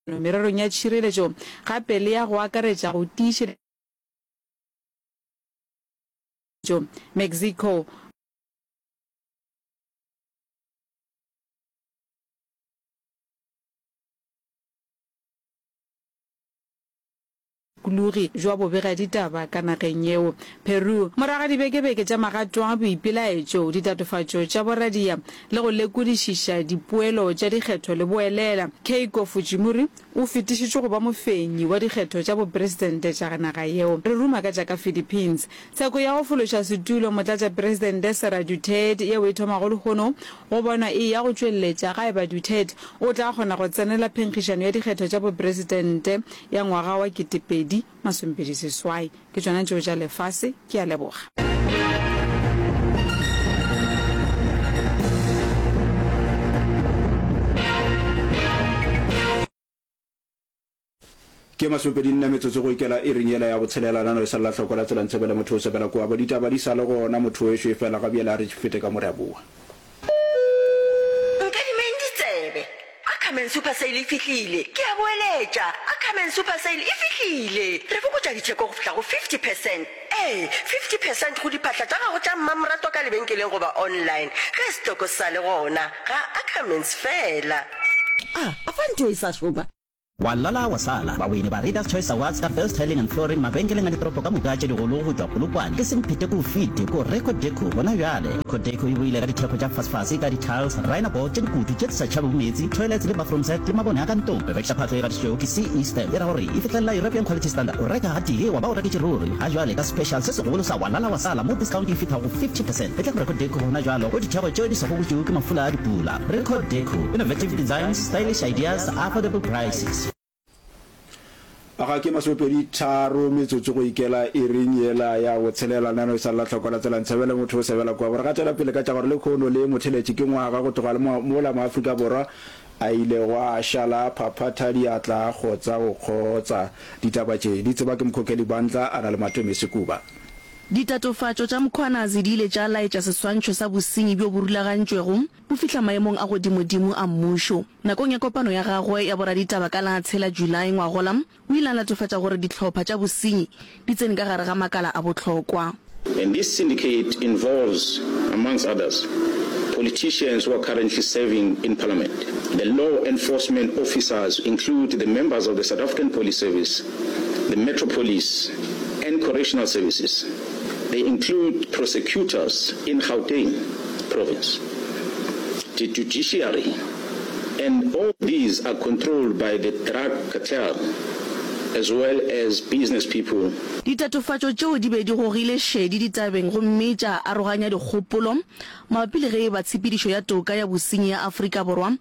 mererong ya tšhireletšo gape le ya go akaretša go tiišetša Mexico. Kulugi jwa bobega ditaba ka nageng yeo, Peru. Morago ga dibekebeke tša magato a boipelaetšo, ditatofatšo tša boradia le go lekodišiša dipoelo tša dikgetho le boelela, Keiko Fujimori o fetišitšwe go ba mofenyi wa dikgetho tša bopresidente tša naga yeo. Re ruma ka tša ka Philippines. Tsheko ya go fološa setulo motlatšapresidente Sara Duterte yeo e thomago lehono go bonwa e eya go tšweletša ga eba Duterte o tla kgona go tsenela phenkgišano ya dikgetho tša bopresidente ya ngwaga wa ketepedi masomepedi seswai ke tšona tšeo tša lefase ke a leboga. Ke masomepedi nne metsotso go ikela iring yela ya botshelela nano e sa lela hloko la tsela ntshebele motho o sebela kua bo ditaba di sa le gona motho wešo e fela ga bjela a re tšifete ka moreabua. Nkadimeng ditsebe. Ackerman Super Sale e fihlile! Ke a boeletša, Ackerman Super Sale e fihlile! Re fokotša ditheko go fihla go 50 percent. Ee, 50 percent go diphahla tša gago tša mmamoratwa ka lebenkeleng goba online. Ge setoko se sa le gona, ga Ackermans fela. A, a fa ntho e sa šoma? Wa lala wa sala. Bawini ba Readers Choice Awards ka First Hurling and Flooring mabenkeleng a ditoropo ka moka tše digolo go tšwa Polokwane ke semphete k'o fite k'o re Codeco gona bjale. Codeco e boile ka dithekgo tša fasefase ka di-tiles, rhino board tše dikutu tše di sa tšhabego meetse, toilets le bathroom set le mabone a ka ntong. Rekiša phatlo e gatišitšwego ke CE Stamp e ra gore e fihlelela European Quality Standard. O reka gatee wa ba o reketše ruri. Ga bjale ka special se segolo sa Wa lala wa sala mo discount e fihla go 50 percent e tla go re Codeco gona bjalo k'o dithekgo tšeo di sa gogotšwego ke mafula a dipula. Record Deco, innovative designs, stylish ideas, affordable prices. A ga ke masopedi tharo metsotso go ikela iring yela ya go tshelela nano e sa lla tlhoko la tsela ntshebele motho o sebela kwa gore ga tšwela pele ka tša gore le khono le motheletše ke ngwaga go tloga le mola mo Afrika Borwa a ile go a šala a phaphatha diatla a kgotsa go kgotsa ditaba tše di tseba ke mokhokheli bantla a na le matome sekuba Ditatofatšo tša Mkhwanazi di ile tša laetša seswantšho sa bosenyi bjo bo rulagantšwego bo fihla maemong a godimodimo a mmušo. Nakong ya kopano ya gagwe ya boraditaba ka la tshela Julae ngwagola, o ile a latofatša gore dihlopha tša bosenyi di tsene ka gare ga makala a bohlokwa. And this syndicate involves, amongst others, politicians who are currently serving in Parliament. The law enforcement officers include the members of the South African Police Service, The Metro Police and Correctional Services, they include prosecutors in Gauteng Province, the judiciary and all these are controlled by the drug cartel as well as business people. Ditatofatšo tšeo di be di gogile šedi ditabeng gomme tša aroganya dikgopolo mabapi le ge e ba tshepedišo ya toka ya bosenyi ya Afrika Borwa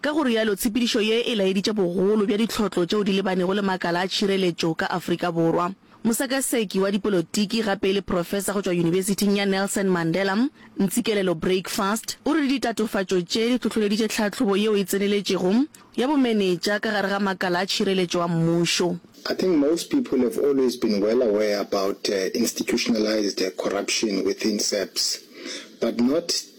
Ka go rialo, tshepedišo ye e laeditše bogolo bja ditlhotlo tšeo di lebanego le makala a tšhireletšo ka Afrika Borwa. Mosekaseki wa dipolotiki gape e le profesa go tšwa Yunibesithing ya Nelson Mandela, Ntsikelelo Breakfast, o re ditatofatšo tše di hlohloleditše tlhahlobo yeo e tseneletšego ya bomenetša ka gare ga makala a tšhireletšo a mmušo. I think most people have always been well aware about institutionalised corruption within SAPS, but not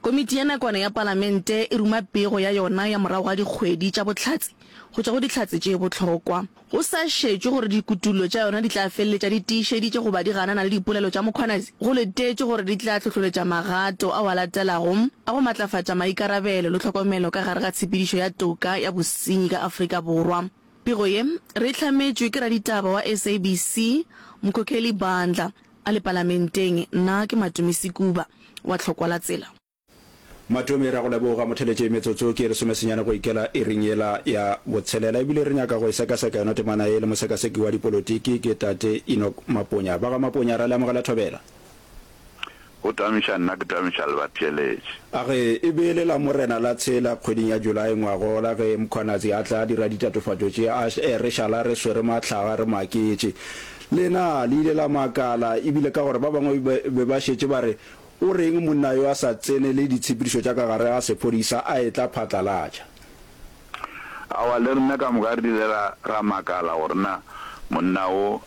Komiti ya Nakwana ya Palamente e ruma pego ya yona ya morago ga dikgwedi tša bohlatse go tšwa go Dihlatse tše Bohlokwa, go sa šetšwe gore dikutullo tša yona di tla feleletša di tiišeditše goba di ganana le dipolelo tša Mkhwanazi, go letetšwe gore di tla hlohloletša magato ao a latelago a go matlafatša maikarabelo le tlhokomelo ka gare ga tshepedišo ya toka ya bosenyi ka Afrika Borwa. Pego ye re e hlametšwe ke raditaba wa SABC, Mkhokheli Bandla. A le palamenteng, nna ke Matomi Sekuba wa Tlhokwalatsela. Matomi, re a go leboga. Motheletše, metsotso ke ye lesomesenyane go ikela iring yela ya botshelela, e bile re nyaka go e sekaseka yona temana ye le mosekaseki wa dipolotiki, ke Tate Enoch Maponya. Ba ga Maponya, ra le amogela thobela. O tamiša nna ke tamiša le batheeletši. A re e be e le la Morena la tshela kgweding ya July ngwagola ge Mkhwanazi a tla dira ditatofatšo tše a re šala re swere mahlaga re maketše. Lena le ile la makala ebile ka gore ba bangwe be ba šetše ba re o reng monna yo a sa tsenele ditshepedišo tša ka gare ga sephodisa a etla phatlalatša. Awa le rena ka moka re ile ra makala gore na monna wo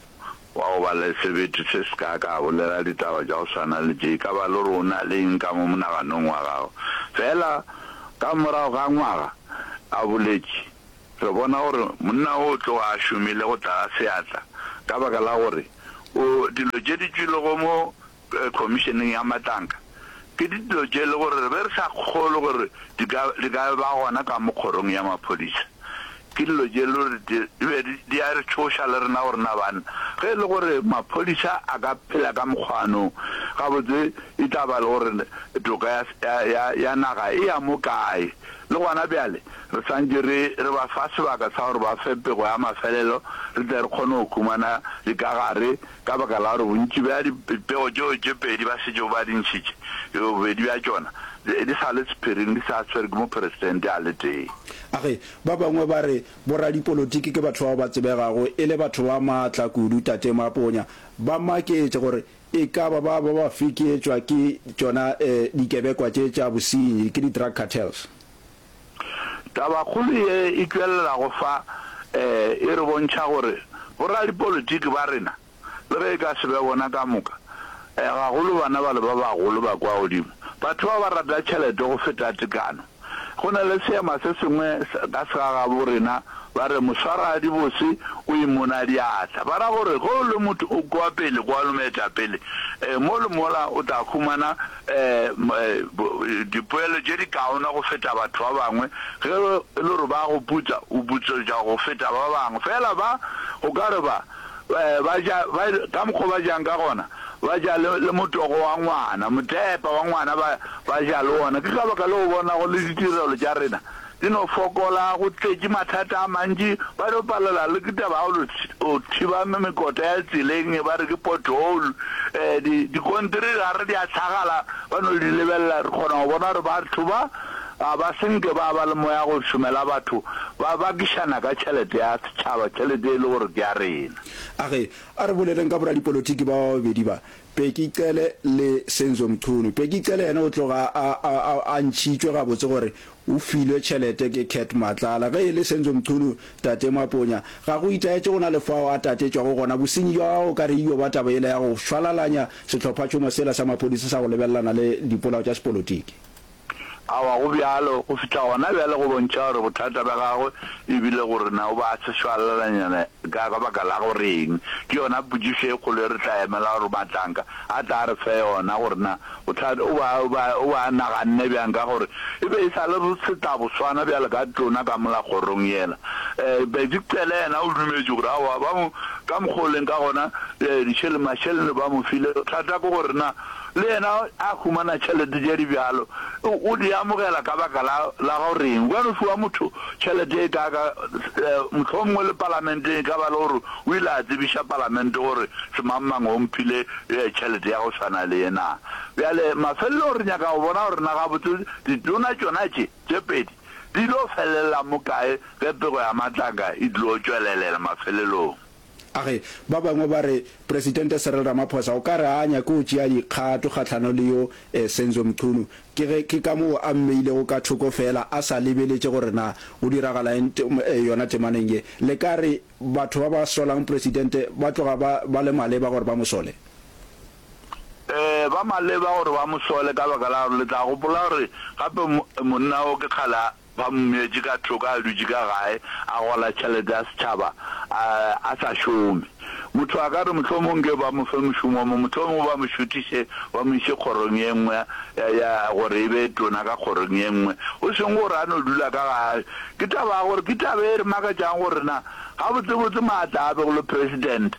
Wa go ba le sebete se seka ka bolela ditaba tša go swana le tše. E ka ba le gore o na le eng ka mo monaganong wa gago. Feela ka morago ga ngwaga a boletše, re bona gore monna wo o tloga a šomile go tla ga seatla ka baka la gore o dilo tše di tšwilego mo Khomišeneng ya Matlanka ke dilo tše e le gore re be re sa kgolwe gore di ka ba gona ka mo kgorong ya maphodisa. Ke dilo tše e le gore di be di a re tšhoša le rena gore na banna ge e le gore maphodisa a ka phela ka mokgwano gabotse e tla ba le gore toka ya naga e ya mo kae. Le gona bjale re swantše re ba fa sebaka sa gore ba fe pego ya mafelelo re tle re kgone go humana dikagare Ka baka la gore bontši bja dipego tšeo tše pedi ba šetšego ba di ntšhitše, bobedi bja tšona di sa le sephiring di sa swerwe ke mopresidente a le tee. A Ge ba bangwe ba re boradipolotiki ke batho bao ba tsebegago e le batho ba maatla kudu, Tate Maponya ba maketše gore e ka ba ba ba fekeetšwa ke tšona dikebekwa tše tša bosenyi, ke di-drug cartels. Tabakgolo ye e tšwelelago fa e re bontšha gore boradipolitiki ba rena, le ge e ka se be bona ka moka, gagolo bana bale ba bagolo ba kwa godimo, batho ba ba rata tšhelete go feta tekano. Go na le seema se sengwe ka segagabo rena ba re moswaragadibosi o imona diatla, ba ra gore ge o le motho o kwa pele kwa le moetapele mo le mola o tla humana dipoelo tše dikaona go feta batho ba bangwe, ge e le gore ba go putsa, o putsetša go feta ba bangwe. Feela ba, o ka re ba, ba ja, ba, ka mokgwa o ba jang ka gona, ba ja le, le motogo wa ngwana, motepa wa ngwana ba, ba ja le wona. Ke ka baka leo o bonago le ditirelo tša rena di no fokola, go tletše mathata a mantši, ba no palela le ke taba ya go no thiba mekota ya tseleng e ba re ke pothole. Um di dikontere ra re di a hlagala, ba no di lebelela, re kgona go bona gore batho ba ga ba senke ba ba le moya go šomela batho, ba bakišana ka tšhelete ya setšhaba, tšhelete e le gore ke ya rena. A re, A re boleleng ka boradipolotiki ba ba babedi ba, Peki Cele le Senzo Mchunu. Peki Cele yena o tloga a, a, a, a ntšhitšwe gabotse gore o filwe tšhelete ke Cat Matlala. Ge e le Senzo Mchunu, Tate Maponya, ga go itaetše go na le fao a tatetšwago gona. Bosenyi bja gagwe o ka re e dio ba taba yela ya go šwalalanya sehlophatšhomo sela sa maphodisa sa go lebelelana le dipolao tša sepolotiki. Aowa, go bjalo. Go fihla gona bjale go bontšha gore bothata bja gagwe e bile go re na o ba a se šwalalanyana ka ka baka la go reng. Ke yona potšišo e kgolo e re tla emela gore Mahlanka a tla re fe yona gore na bothata o ba o ba o ba naganne bjang ka gore e be e sa le re se tla bo swana bjale ka tlona ka mola kgorong yela. Eh, Bedi Cele yena o dumetše gore aowa ba mo ka mokgwa o leng ka gona eh, dišele, mašelene ba mo file. Bothata ke gore na Le yena a humana tšhelete tše di bjalo. O di amogela ka baka la, la go reng? Gobane o fiwa motho tšhelete e kaaka, mohlomongwe le Palamenteng e ka ba le gore o ile a tsebiša Palamente gore semangmang o mphile tšhelete ya go swana le ye na. Bjale mafelelong re nyaka go bona gore na gabotse ditona tšona tše, tše pedi, di tlo felelela mo kae ge pego ya matlaka e tlo tšwelelela mafelelong. A re, Ba bangwe ba re Presidente Cyril Ramaphosa o ka re a a nyake go tšea dikgato kgahlano le yo Senzo Mchunu ke ge ke ka moo a mmeilego ka thoko feela a sa lebeletše gore na go diragala eng yona temaneng ye. Le ka re batho ba ba solang Presidente ba tloga ba ba le maleba gore ba mo sole? Ee, ba maleba gore ba mo sole ka baka la gore le tla gopola gore gape monna wo ke kgale Ba mo metše ka thoko a dutše ka gae, a gola tšhelete ya setšhaba, a, a sa šome. Motho a ka re, Mohlomong nke ba mo fe mošomo o mongwe, mohlomong ba mo šuthiše, ba mo iše kgorong ye nngwe ya, ya, gore e be tona ka kgorong ye nngwe, go seng gore a no dula ka ga. Ke taba ya gore, ke taba e re makatšago gore na gabotsebotse maatla a begilwe President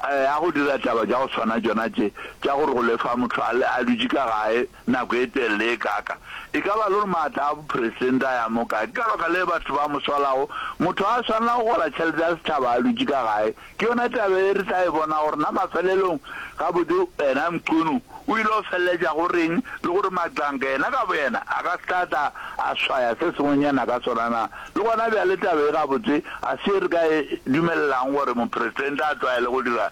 a go dira taba tša go swana tšona tše, tša gore go lefa motho a, a dutše ka gae, nako e telele ye kaaka, e ka ba le gore maatla a bopresidente a ya mo kae. Ke ka baka lee batho ba mo swalago. Motho a swanela go gola tšhelete ya setšhaba a dutše ka gae. Ke yona taba ye re tla e bonago gore na mafelelong gabotse yena Mchunu o ile go feleletša go reng le gore Magcanga yena ka boyena a ka se tla tla a swaya se sengwenyana ka sona na. Le gona bjale taba ye gabotse ga se ye re ka e dumelelago gore mopresidente a tlwaele go dira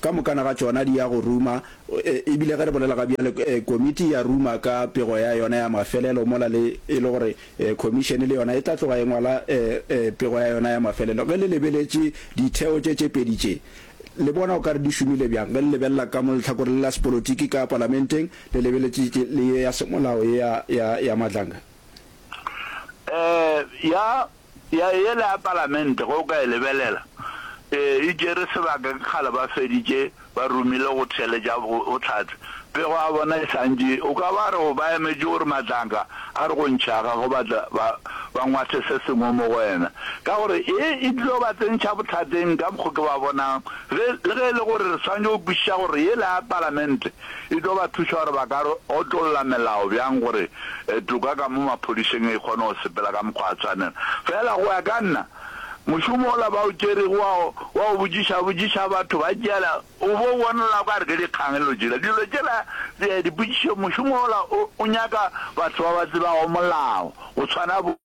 Ka mokana ga tšona di ya go ruma, e bile ge re bolela ga bjale, Komiti ya ruma ka pego ya yona ya mafelelo mola le e le gore Khomišene le yona e tla tloga e ngwala pego ya yona ya mafelelo. Ge le lebeletše ditheo tše tše pedi tše, le bona o ka re di šomile bjang? Ge le lebelela ka mo lehlakoreng la sepolotiki ka Palamenteng, le lebeletše le ye ya semolao ye ya, ya, ya Madlanga? Ee, ya Ya yela ya palamente ge o ka e lebelela e e tšere sebaka ke kgale ba feditše ba romile go theeletša bohlatse pego ya bona e santše o ka ba re ba emetše gore matlanka a re go ntšhaga go batla ba ba ngwathe se sengwe mo go wena ka gore e e tlilo ba tsentšha bohlateng ka mokgo ke ba bonang ge le ge e le gore re swanetše go kwešiša gore yela ya palamente E tlo ba thuša gore ba ka otlolla melao bjang gore toka ka mo maphodišeng e kgone go sepela ka mokgwa wa tshwanelo. Feela go ya ka nna, mošomo ola ba o tšerego wa go botšišabotšiša batho ba tšeela o bo o bonala o ka re ke dikgang e no tšela dilo tšela dipotšišo. Mošomo ola o nyaka batho ba ba tsebago molao go tshwana bo.